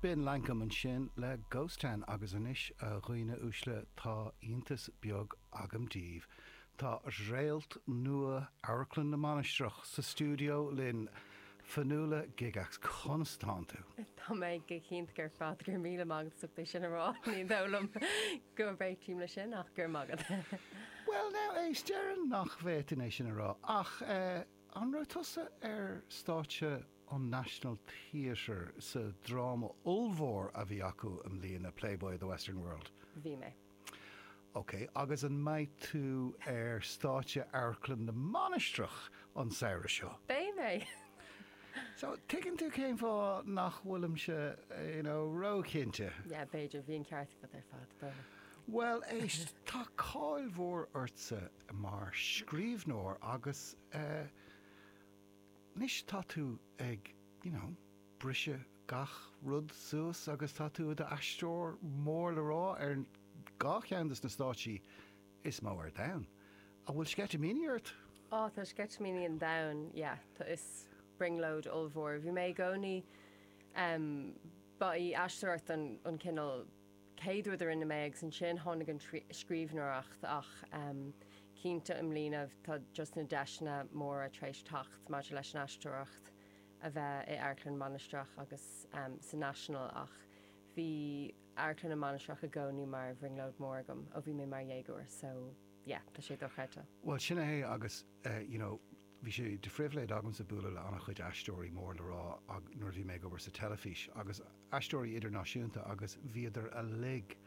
B'in Lankum, ansin le Ghost Town agus anois, a dhaoine uaisle, tá iontas beag agam daoibh, tá réalt nua Amharclann na Mainistreach sa stiúideo linn! Fionnuala Gygax, conas tánn tú? Tá mé go hiontach ar fad, go raibh míle maith agat as ucht é sin a rá, ní dóigh liom go réitím leis sin ach go raibh maith agat! Bhuel now, éist, déarfainn nach bhféadfainn é sin a rá ach eh, an raibh tusa ar stáitse? an National Theatre sa dráma ollmhór a bhí acu i mbliana, Playboy of the Western World. Bhí mé. OK, agus an mbeidh tú ar stáitse Amharclann na Mainistreach an samhradh seo? Beidh mé. So, tuigeann tú cén fáth nach bhfuilimse, you know, róchinnte. Yeah, b'fhéidir, bhí an ceart agat ar fad, b'fhéidir. Bhuel, éist, tá cáil mhór ortsa mar scríbhneoir agus eh. Anois tá tú ag, you know, briseadh gach rud suas agus tá tú i d'aisteoir mór le rá ar dhá cheann de na stáitsí is mó ar domhan. An bhfuil sceitimíní ort? Oh, tá sceitimíní an domhain, yeah, tá, is brionglóid ollmhór í. Bhí mé i gcónaí, em, ba í aisteoireacht an, an cineál, chéad rud a rinne mé agus ansin tháinig an scríbhneoireacht ach cinnte i mbliana tá just na deiseanna móra tar éis teacht maidir leis an aisteoireacht a bheith in Amharclann na Mainistreach agus sa National ach bhí Amharclann na Mainistreach i gcónaí mar bhrionglóid mór agam ó bhí mé mar dhéagóir so yeah tá sé dochreidte. Bhuel sin é agus. eh you know bhí sé de phribhléid agamsa bualadh le an-chuid aisteoirí mór le rá ag, nuair a bhí mé ag obair sa teilifís agus aisteoirí idirnáisiúnta agus bhíodar uilig,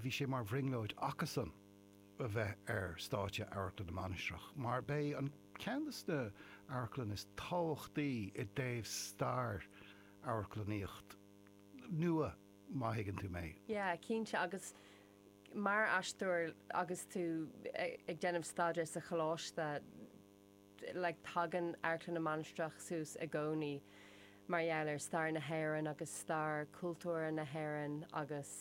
bhí sé mar bhrionglóid acusan a bheith ar stáitse Amharclann na Mainistreach mar b'é ceann dos na hamharclanna is tábhachtaí i dtaobh stair amharclannaíocht nua má thuigeann tú mé. Yeah, cinnte agus Mar aisteoir agus tú ag déanamh staidéir sa choláiste like tagann Amharclann na Mainistreach suas i gcónaí mar gheall ar stair na hÉireann agus stair chultúr na hÉireann agus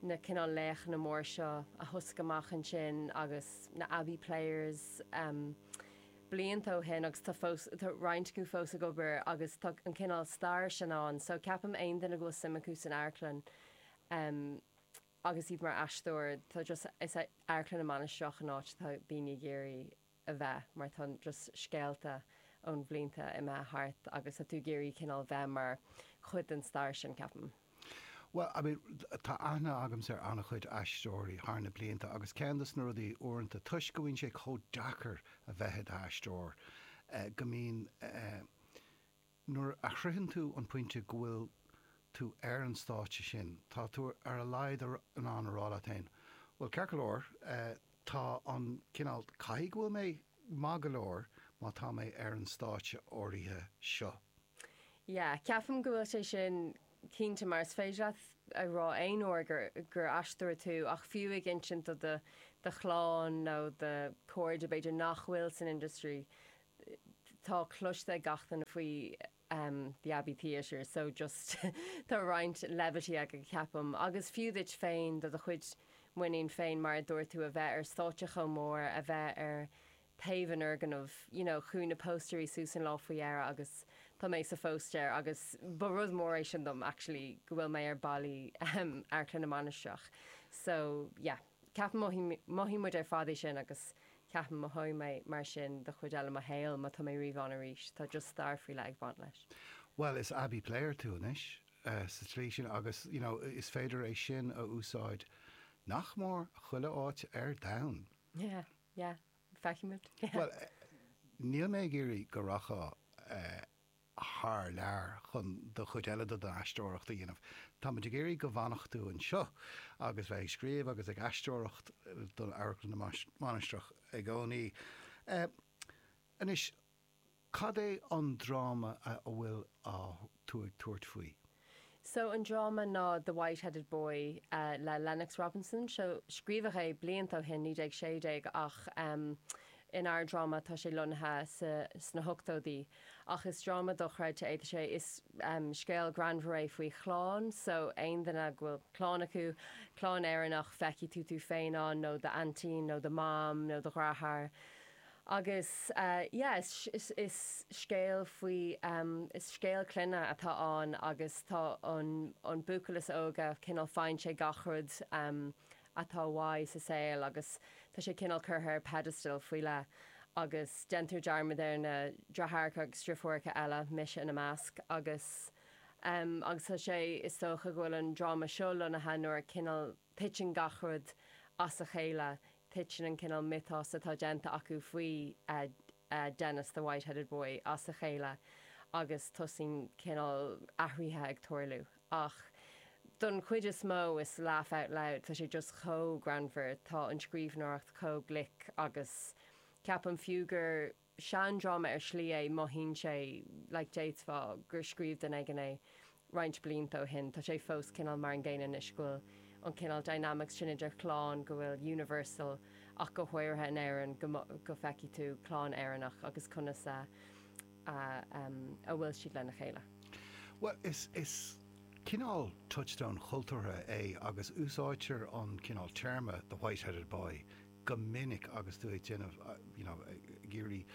na cineál laochanna mór seo a thosaigh amach ansin agus na Abbey Players em blianta ó shin agus tá fós tá roinnt acu fós ag obair agus tá an cineál stair sin ann so ceapaim aon duine go bhfuil suim acu san amharclann em agus iad mar aisteoir, tá just, is é Amharclann na Mainistreach an áit atá daoine ag iarraidh a bheith mar tá just scéalta ó na blianta imithe thart agus tá tú ag iarraidh cineál bheith mar chuid den stair sin, ceapaim. Bhuel, I mean, tá aithne agamsa ar an-chuid aisteoirí thar na blianta agus ceann dos na rudaí uaireanta, toisc go mbíonn sé chomh deacair a bheith i d'aisteoir, go mbíonn, eh, Nuair a shroicheann tú an pointe go bhfuil tú ar an stáitse sin, tá tú ar a laghad in ann a rá leat féin, Bhuel, ceart go leor, tá an cineál, caithfidh go bhfuil mé maith go leor má tá mé ar an stáitse áirithe seo. Yeah, ceapaim go bhfuil sé sin cinnte mar is féidir leat a rá aon uair gur aisteoir tú ach fiú ag insint do do chlann nó do chairde b'fhéidir nach bhfuil san industry, tá cloiste ag gach duine faoi The Abbey Theatre so just tá roinnt levity agat ceapaim agus fiú duit féin, do do chuid muiníne féin mar a dúirt tú a bheith ar stáitse chomh mór, a bheith ar taobh an fhoirgnimh you know chuaigh na póstaerí suas an lá faoi dheireadh agus tá mé sa phóstaer agus ba rud mór é sin dom actually go bhfuil mé ar ballaí Amharclann na Mainistreach so yeah. Ceapaim, mothaíonn muid ar fad é sin agus ceapaim, mothóidh mé mar sin don chuid eile mo shaol má tá mé riamh ann arís. Tá just stair faoi leith ag baint leis. Bhuel, is Abbey player tú anois sa tslí sin agus you know is féidir é sin a úsáid nach mór chuile áit ar domhan. Yeah, yeah. Feicfimid. Bhuel, níl mé ag iarraidh go rachfá eh. thar lear chun an chuid eile de do aisteoireacht a dhéanamh. Táimid ag iarraidh go bhfanfá anseo agus bheith ag scríobh agus ag aisteoireacht d'Amharclann na Mainistreach i gcónaí. Anois, cad é an dráma a bhfuil tú ag tabhairt faoi? So an dráma ná The White Headed Boy le Lennox Robinson. Seo, scríobhadh é blianta ó shin, 1916, ach in ár dráma tá sé lonnaithe sa, sna hochtóidí. Ach is dráma dochreidte é. Tá sé, is scéal greannmhar é faoi chlann. So, aon duine go bhfuil clann acu, clann Éireannach, feicfidh tú tú féin ann, nó do aintín, nó do mom, nó do dheartháir. Agus yeah is is scéal faoi is scéal clainne atá ann agus tá an an buachaill is óige cineál faigheann sé gach rud atá uaidh sa saol agus tá sé cineál curtha ar pedestal faoi leith agus déantar dearmad ar na deartháireacha agus deirfiúracha eile, mise ina measc, agus agus tá sé is dócha go bhfuil an dráma seo lonnaithe nuair a cineál. Titeann gach rud as a chéile. Titeann an cineál miotas atá déanta acu faoi Denis the White-Headed Boy as a chéile agus tosaíonn cineál athraithe ag tarlú. Ach don chuid is mó is laugh out loud, tá sé just chomh greannmhar, tá an scríbhneoireacht chomh glic agus ceapaim fiú gur. seandráma ar shlí é, mothaíonn sé like déarfá gur scríobh duine éigin é roinnt blianta ó shin. Tá sé fós cineál mar an gcéanna anois, go bhfuil an cineál dynamics sin idir chlann go bhfuil universal ach go háirithe in Éirinn go go feicfidh tú clann Éireannach agus conas a a bhfuil siad lena chéile. Bhuel is is cineál touchstone chultúrtha é agus úsáidtear an cineál téarma the white-headed boy go minic agus tú ag déanamh you know ag iarraidh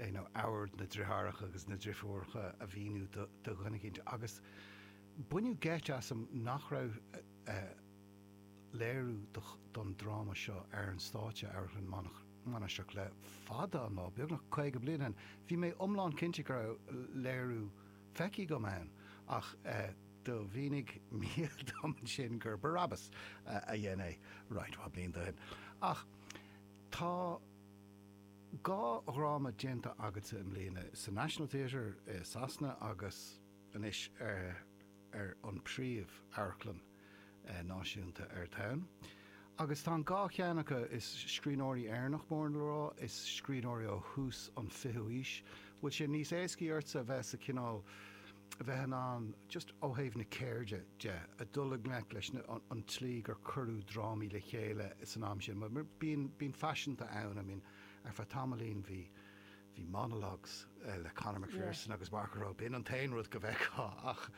you know ómhar na dritheáracha agus na drifiúracha a mhíniú do do dhuine eicínt agus baineadh geit asam nach raibh eh léiriú do don dráma seo ar an stáitse Amharclann na Mainistreach le fada an lá, beagnach caoga bliain ó shin. Bhí mé iomlán cinnte go raibh léiriú. feicthe agam ann ach do mhínigh Mícheal dom ansin gur Barabbas a dhein é roinnt mhaith blianta ó shin. Ach tá dhá dhráma déanta agatsa i mbliana, sa National Theatre i Sasana agus anois ar an bpríomh amharclann. náisiúnta ar domhan agus tá an dhá cheann acu is scríbhneoirí Éireannach mór le rá, is scríbhneoirí ó thús an 20ú haois, bhfuil sé níos éascaí ortsa a bheith sa cineál, a bheith in ann just ó thaobh na ceirde de, a dul i ngleic leis na, an tslí gur cuireadh drámaí le chéile san am sin, bíonn, bíonn faiseanta ann, I mean ar feadh tamaillín bhí, Bhí monologues le Conor McPherson agus Mark O'Rowe, b'in an t-aon rud go bhfeicfeá ach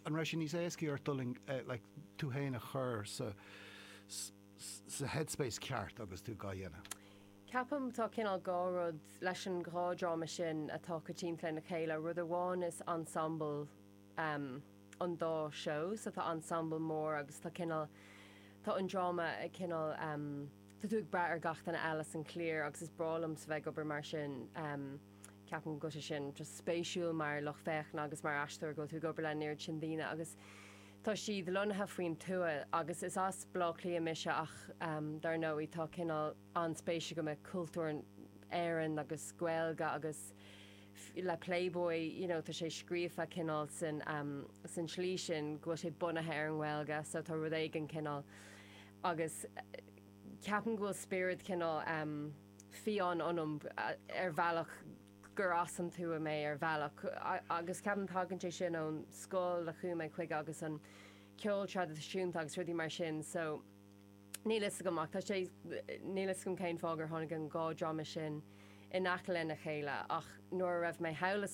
an raibh sé níos éascaí ort dul i ngleic tú fhéin a chur sa sa headspace ceart agus tú gá dhéanamh? Ceapaim tá cineál dhá rud leis an dhá dráma sin atá coitianta lena chéile, rud amháin is ensemble um an dá seó so tá ensemble mór agus tá cineál tá an dráma ag cineál um tá tú ag brath ar gach duine eile san cliar agus is breá liomsa bheith ag obair mar sin um ceapaim go bhfuil sé sin just spéisiúil mar lucht féachana agus mar aisteoir go bhfuil tú ag obair le an oiread sin daoine agus tá siad lonnaithe faoin tuath agus is as Blá Cliath mise ach um dar ndóigh tá cineál an-spéis agam i cultúr Éireann agus Gaeilge agus le Playboy, you know, tá sé scríofa cineál san, san slí sin go bhfuil sé bunaithe ar an nGaeilge so tá rud éigin cineál agus ceapaim go bhfuil spiorad cineál fiáin ionam ar bhealach gur as an tuath mé ar bhealach agus ceapaim tagann sé sin ón scoil a chuaigh mé chuige agus an ceol traidisiúnta agus rudaí mar sin so Níl a fhios agam ach tá sé, níl a fhios agam cén fáth gur tháinig an dhá dráma sin in aice lena chéile ach nuair a raibh mé thall i